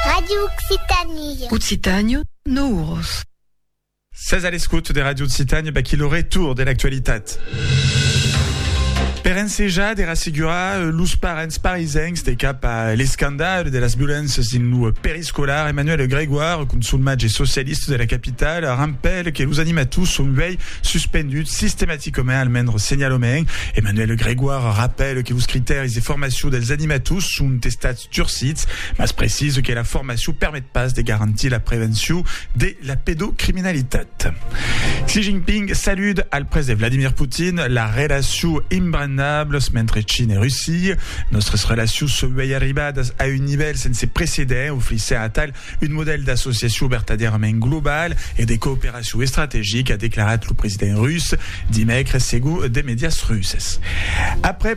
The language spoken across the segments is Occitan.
Radio Occitanie. Occitània, no uros. Sas a l'escot de Radio Occitània baquí lo retour de l'actualitat. Per ensejar de rassegurar los parents parisencs de cap a l'escandal de las violéncias dins lo periscòp, Escolar Emmanuel Grégoire, consulmatge socialista de la capitala, rampèl que los animators son uèi suspenduts sistematicament al mendre senhalament. Emmanuel Grégoire rapèl que los critèris de formacion dels animators son estats durcits, mas precisa que la formacion permet pas de garantir la prevencion de La pedocriminalitat. Xi Jinping salude al prese Vladimir Putin la relacion imbrannables mentre Chin e Russia. Nòstres relacions s'auei arribadas a un nivèl sense precedent, ofrissent atal un modèl d'associacion vertadièrament global e de cooperacion estrategica, a declarat lo president rus dimècres segon de medias russes. Après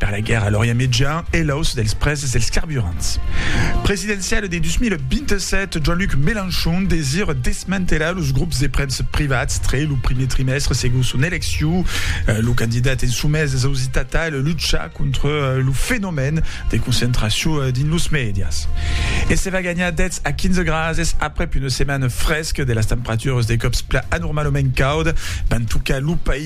Per la guèrra a l'Orient Mejan e l'auç dels prèses dels carburants presidenciale de 2027, Jean-Luc Mélenchon desira desmantelar los grops de premsa privats tre lo primier trimèstre segon son elecciu. Lo candidat en somés es ausitat tal lucha contra lo fenomèn de concentracion dins los mèdias. E se va ganhar 10 a 15 grases aprèp una setmana fresca de las temperaturas de còps plan anormalament cauda van tocar lo país.